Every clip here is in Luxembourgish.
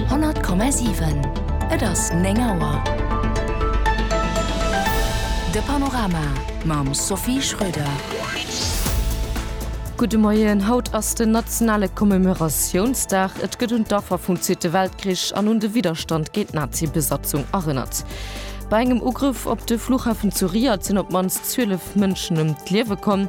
100,7. Et ass 9 Auer. De Panorama mam Sophie Schröder. Gudde Moien. Haut ass den nationale Commemoratiounsdag. Et gëtt un d'Affer vum Zweete Weltkrich an un de Widderstand géint d'Nazi-Besatzung erënnert. Bei engem Ugrëff op de Flughafen zu Riyadh sinn op d'mannst 12 Mënschen ëm d'Liewe komm.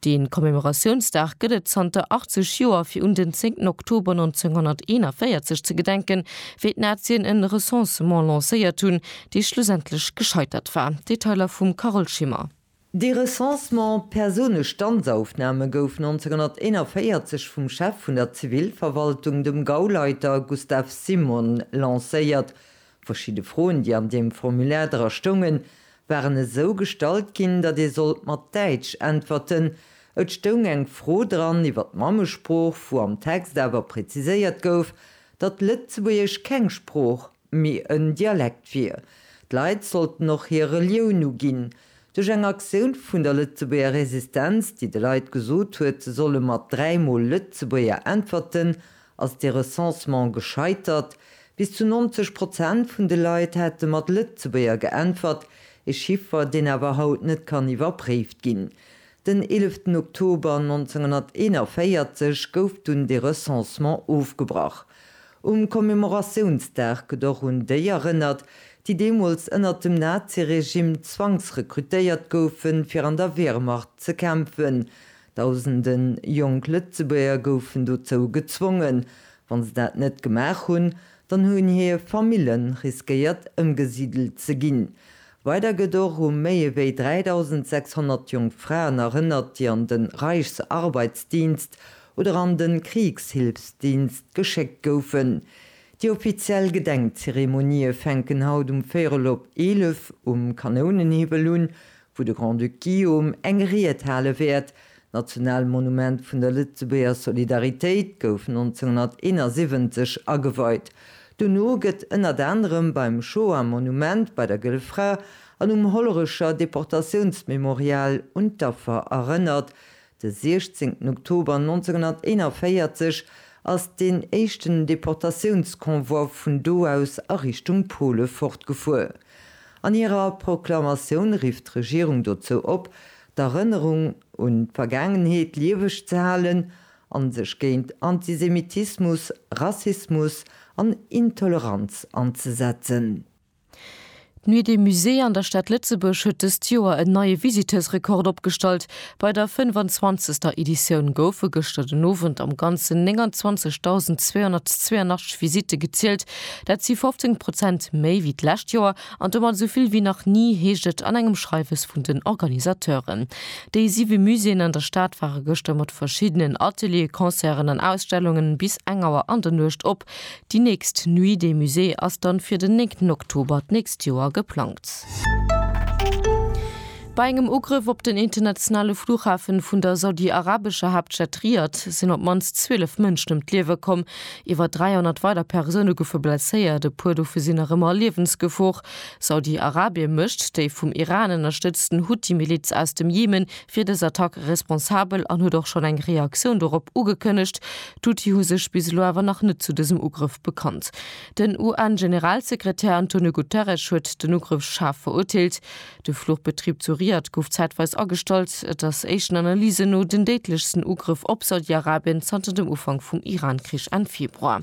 De Commemoratiounsdag gëtt et zanter 80 Joer, fir un den 10 Oktober 1941 ze gedenken, wéi d'Nazien en Recensement lancéiert hunn, dee schlussendlech gescheitert war. Detailer vum Carole Schimmer. Dee Recensement, Persounestandsaufnahme, gouf 1941 vum Chef vun der Zivilverwaltung, dem Gauleiter Gustav Simon, lancéiert. Verschidde Froen, déi an deem Formulaire dra stoungen, waren esou gestallt ginn, datt ee sollt mat Däitsch äntwerten. Et stoung eng Fro dran iwwer d'Mammesprooch, wou am Text awer präziséiert gouf, datt Lëtzebuergesch keng Sprooch, mee en Dialekt wier. D'Leit sollten och hir Relioun uginn. Duerch eng Aktioun vun der Lëtzebuerger Resistenz, déi de Leit gesot huet, se solle mat dräimol Lëtzebuerger äntwerten, Ass de Recensement gescheitert? Bis zu 90 Prozent vun de Leit hätte mat Lëtzebuerger geäntwert, e Chiffer, deen awer haut net kann iwwerpréift ginn. Den 11 Oktober 1941 gouf dunn de Recensement ofgebrach. Um Commemoratiounsdag gëtt och un déi erënnert, déi deemools ënnert dem Nazi-Regime zwangsrekrutéiert goufen, fir an der Wehrmacht ze kämpfen, Dausende jonk Lëtzebuerger goufen dozou gezwongen. Wa se dat net gemaach hunn, dann hunn hir Famille riskéiert ëmgesidelt ze ginn. Weider gëtt och u méi ewéi 3.600 jonk Fraen erënnert, déi an de Reichsarbeitsdienst oder an de Kriegshilfsdienst geschéckt goufen. Déi offiziell Gedenkzeremonië fänken haut um véierel op 11 um Kanounenhiwwel un, wou de Grand-Duc Guillaume eng Ried hale wäert. D'National Monument vun der Lëtzebuerger Solidaritéit gouf 1971 ageweit. Dono gëtt ënnert anerem beim Shoah Monument, bei der Gëlle Fra an um Hollerecher Deportatiounsmemorial un d'Affer erënnert, De 16 Oktober 1941 ass deen éischten Deportatiounsconvoi vun do aus a Richtung Pole fortgefuer. An hirer Proklamatioun rifft d'Regierung dozou op, d'Erënnerung un d'Vergaangenheet lieweg ze halen an sech géint Antisemitismus, Rassismus an Intoleranz anzesetzen. D'Nuit des Musées an der Stad Lëtzebuerg huet dëst Joer en neie Visiteursrekord opgestallt. Bei der 25. Editioun goufe gëschter den Owend am Ganzen 29.282 Visitte gezielt. Dat si 15 Prozent méi wéi d'lescht Joer an domat esou vill wéi nach ni, heescht et an engem Schreiwes vun den Organisateuren. Déi siwe Muséeën an der Stad ware gëschter mat verschiddenen Atelieren, Concerten an Ausstellungen bis eng Auer an der Nuecht op. Déi nächst Nuit des Musées ass dann fir den 9 Oktober d'nächst Joer geplangt. Bei engem Ugrëff op den internationale Flughafen vun der saudi-arabescher Haaptstad Riyadh sinn op d'mannst 12 Mënschen ëm d'Liewe komm. Iwwer 300 weider Persoune goufe blesséiert, e puer dovu sinn nach ëmmer a Liewensgefor. Saudi-Arabien mécht déi vum Iran ënnerstëtzten Huthi-Miliz aus dem Jemen fir dës Attack responsabel an huet och schonn eng Reaktioun dorop ugekënnegt. D'Houthi hu sech bis elo awer nach net zu dësem Ugrëff bekannt. Den UN-Generalsekretär Antonio Guterres huet den Ugrëff schaarf verurteelt. De Fluchbetrib zu Riyadh gouf zäitweis agestallt. Et ass éischten Analysen no den déidlechsten Ugrëff op Saudi-Arabien zanter dem Ufank vum Iran-Krich Enn Februar.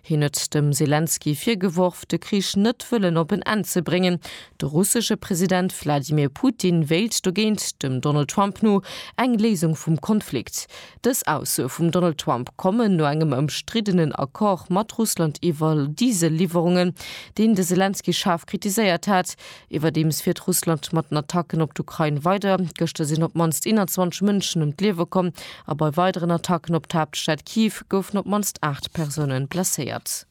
Hien huet dem Selenskyj virgeworf, de Krich net wëllen op en Enn ze bréngen. De russesche President Wladimir Putin wéilt dogéint, dem Donald Trump no, eng Léisung vum Konflikt. Dës Aussoe vum Donald Trump kommen no engem ëmstriddenen Accord mat Russland iwwer Diesel-Liwwerungen, deen de Selenskyj schaarf kritiséiert hat, Iwwerdeems fiert Russland mat den Attacken op d'Ukrain weider. Gëschter sinn op d'mannst 21 Mënschen ëm d'Liewe komm a bei weideren Attacken op d'Haaptstad Kiew goufen op d'mannst 8 Persoune blesséiert.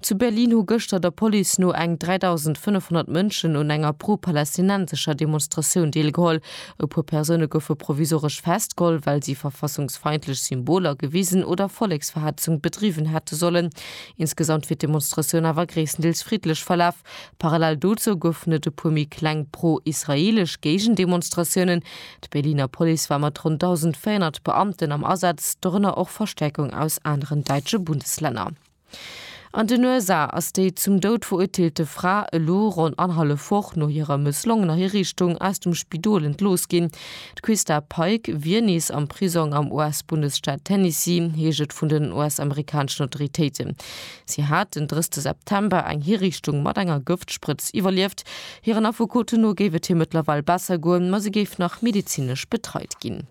Zu Berlin hu gëschter der Police no eng 3.500 Mënschen un enger pro-palästinensescher Demonstratioun deelgeholl. E puer Persoune goufe provisoresch festgeholl, well si verfassungsfeindlech Symboler gewisen oder Volleksverhetzung bedriwwen hätte sollen. Insgesamt wier d'Demonstratioun awer gréisstendeels friddlech verlaf. Parallel dozou goufen et e puer méi kleng pro-israeelesch Géigendemonstratiounen. D'Berliner Police war mat ronn 1.400 Beamten am Asaz, dorënner och Verstäerkung aus aneren däitsche Bundeslänner. An den USA ass déi zum Doud verurteelte Fra elo ronn annerhallef Woch no hirer mësslongener Hiriichtung aus dem Spidol entlooss ginn. D'Quista Pike wier nees am Prisong am US-Bundesstaat Tennessee, heescht et vun den US-amerikaneschen Autoritéiten. Si hat den 30 September eng Hiriichtung mat enger Gëftsprëtz iwwerlieft. Hiren Affekoten no géif et hir mëttlerweil besser goen, ma se géif nach medezinesch betreit ginn.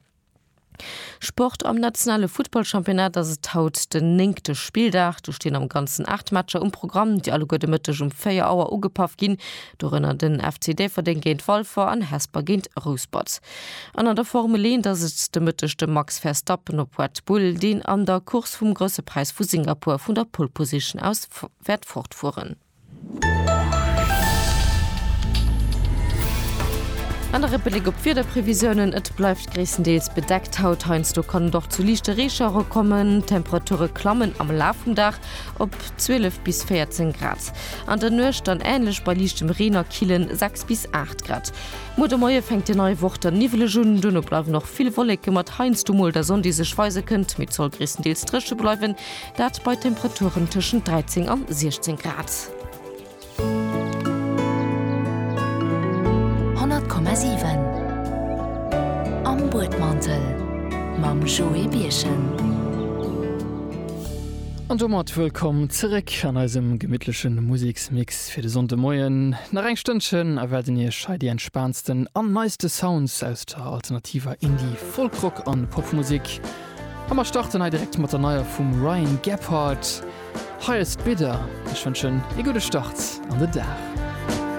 Sport, Am nationale Futtballchampionnat ass et haut den néngte Spilldag. Do stinn am Ganzen 8 Matcher um Programm, déi alleguer de Mëtteg um 4 Auer ugepaff ginn. Dorënner den FC Déifferdeng géint Walfer an Hesper géint Rouspert. An an der Formel 1 ass et de Mëtteg de Max Verstappen op Red Bull, deen an der Course vum Grousse Präis vu Singapur vun der Pole Position aus wäert fortfueren. An nach e Bléck op d'Wiederprevisiounen, Et bleift gréisstendeels bedeckt haut, heiansdo kann et och zu liichte Reeschauere kommen. D'Temperature klammen am Laf vum Dag op 12 bis 14 Grad, an der Nuecht dann änlech bei liichtem Reen a killen 6 bis 8 Grad. Muer de Moie fänkt déi nei Woch dann niwweleg un, duerno bleiwen och vill Wolleke mat heiansdo mol der Sonn, déi sech weise kënnt, mee et soll gréisstendeels dréche bleiwen, dat bei Temperaturen tëschent 13 an 16 Grad. Honnert Komma siwen Am Buedmantel mam Joé Birchen. An domat wëllkomm zeréck an eisem gemittleche Museksmix. Fir de Sonndemoien nach eng Stënnchen a wäerten iech hei déi entspaantsten an neiste Sounds aus der alternativer Indie-, Folk-Rock an Popmusek. A mer starten hei direkt mat der neier vum Ryan Gebhard, Highest Bidder. Ech wënschen ee gudde Start an de Dag.